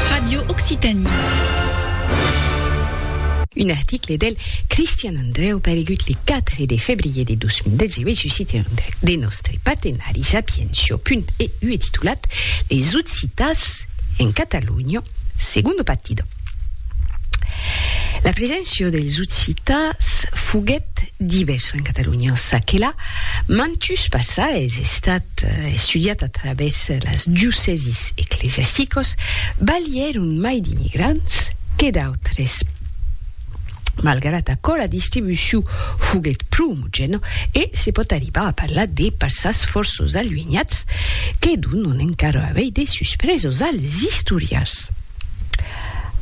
Radio Occitanie. Un article del Cristian Andreu paregut le 4 de febrier de 2018 sus site un de nòstre partenari Sapiencio.eu e titulat Les Occitans en Catalunya, segundo partido. La preséncia dels occitans foguèt divèrsa en Catalonha, en ça que la mantus passa es estat estudiat a travèrs las diocèsis ecclesiasticos, balhèron mai d'immigrants que d'autres, malgrat aquò la distribucion foguèt pro omogèna e se pòt arribar a parlar de passas fòrços aluenhats que donon encara avei de suspresos als istorians.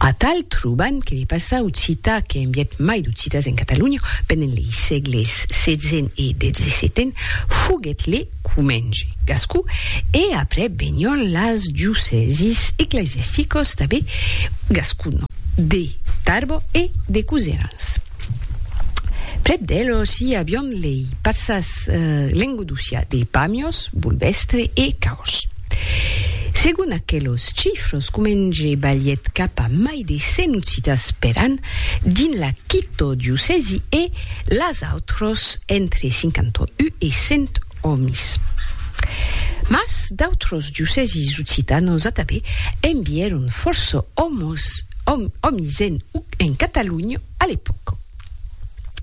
Atal trobant que de passar occita que en viet mai d'occitas en Catalonha pendent lei sègles setzen e dexesetten, foguèt le comenge gascon e après venion las diocèsis eclesiasticos tanben gascon, de Tarbò e de Coserans. Prèp d'elos i avion lei parsas lengodocià de Pamios, Bolvestre e Caos. Segon aquelos chifros, comenge balhèt cap a mai de 100 occitas per an dins la quito diocèsi e las autros entre 51 e 100 òmis. Mas d'autros diocèsis occitanos atabé envièron fòrça òmis en Catalonha a l'epòca.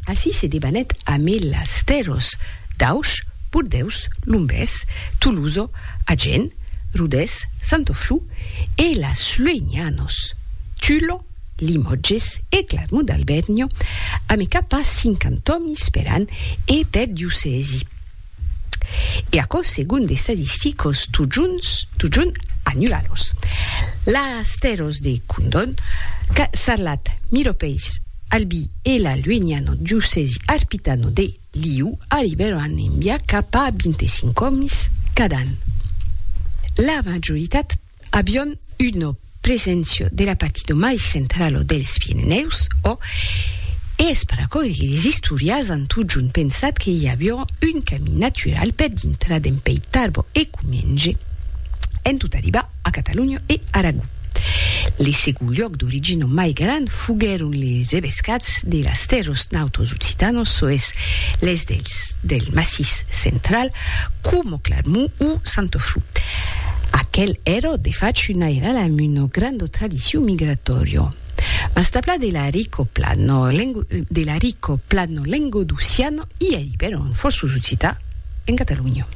Ací se debanèt amé las tèrros d'Aush, Bordeus, Lombés, Toloso, Agen, Rodés, Santoflù e las Luegnanòs, Tullo, Limòtges e Clarmont d'Albèrnio, amé cap a cinquant'òmis per an e per diocèsi. e aquò segon d'estadisticos totjorns totjorn anualos. Las tèrras de Condon, qu'a Sarlat, Miropèis, Albi e la lueniana diocèsi arpitana de Liu arribèran enviar cap a 25 òmis cada an. La majoritat Avion una preséncia de la partida mai centrala dels Pirenèus, ò? E es per aquò que les istorians an totjorn pensat que i aviá un camin natural per dintrar dempè ei Tarbò e Comenge en tot arribar a Catalonha e Aragó. Le segond luòc d'origina mai grand foguèron les evescats de las tèrras nautras occitanas, çò es, les dels del Massís Central, Como Cladmu o Santofu. Aquel ero de fach un airal amb una granda tradicion migratòria. Mas tabla de l'arico plano, de l'arico plano lengodocian i a Ibèro en fòrços occità en Catalonha.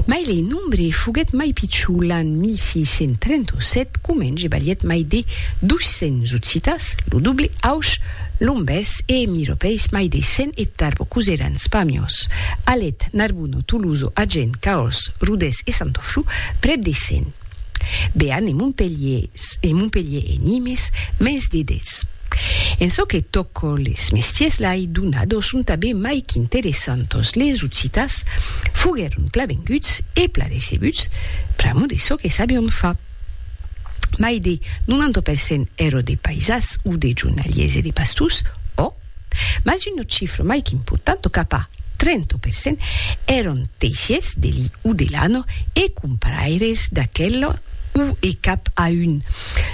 Mai le nombre foguèt mai pichon l'an 1637 comenje balhèt mai de 200 occitàs, lo doble, aush, Lombes e emiropèis mai de cent e tarbo cosèran Spamios, Alet, Narbuno, Tuluzo, Agen, Caors, Rodés e Santoflu, prèp de cent. Bearn e Montpelhiers e Montpelhier e Nimes, mens de dètz. En çò que tòco les mestiers lai donados son tanben mai qu'interessantos, les occitans foguèron pla venguts e pla recebuts pr'amor de çò que sabion far. mai de 90 per cent èro de païsas o de jornaliers e de pastors, ò, mas una chifra mai qu'importanta, cap a 30 per cent, èron teissiers de li o de lana e comparaires d'aquela o e cap a un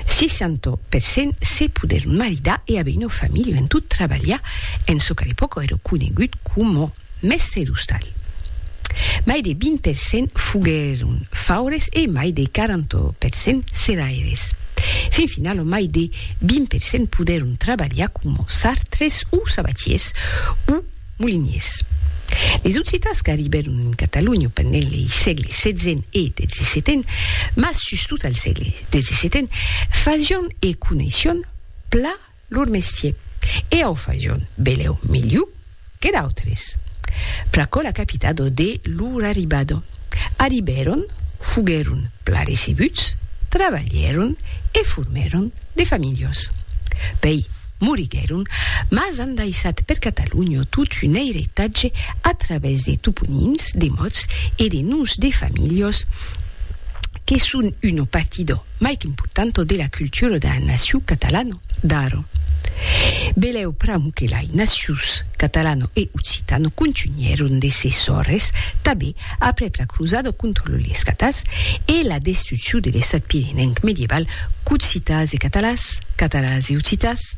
60 per cent se poder maridar e aver una familha en tot trabalhar en çò qu'à l'epòca èra conegut coma Mèste d'ostal. Mai de 20 per cent foguèron faures e mai de 40 per cent serraires. Fin final lo mai de 20 per cent podèron trabalhar coma sartres o sabatiers o moliniers. Des occitans qu'arribèron en Catalonha pendent lei sègle xvii e xvii, mas sustot al sègle xvii, fasián e coneission pla. Lor mestier. E au fajon, beleu, milhu que d'autres. Pr'aquò la capita dode lor arribada. Arribèron, foguèron plan recebuts, trabalhèron e formèron de familhas. Pei, moriguèron, mas an daissat per Catalonha tot un eiretatge a través de toponims, de mots e de noms de familhas que son una partida. mai qu'importanto de la cultura d'a naciu catalano d'aro. Beleu pr'amu que lai nacius catalano e occitano contunhèron de se sòrres tabé aprèp la crusada contra los lescatars e la destrucciu de l'estat pirenenc medieval qu'occitans e catalans, catalans e occitans,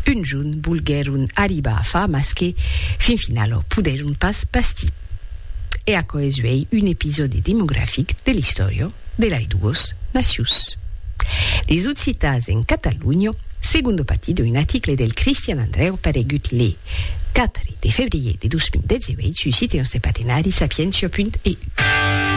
un jorn volguèron arribar a far mas que, fin finala, podèron pas bastir. E aquò es uèi un episòdi demografic de l'istòria de lei duos nacions. Les occitans en Catalonha, segondo partit d'un article del Cristian Andrèu paregut le 4 de febrier de 2018 sus site nòste partenari sapientia.eu.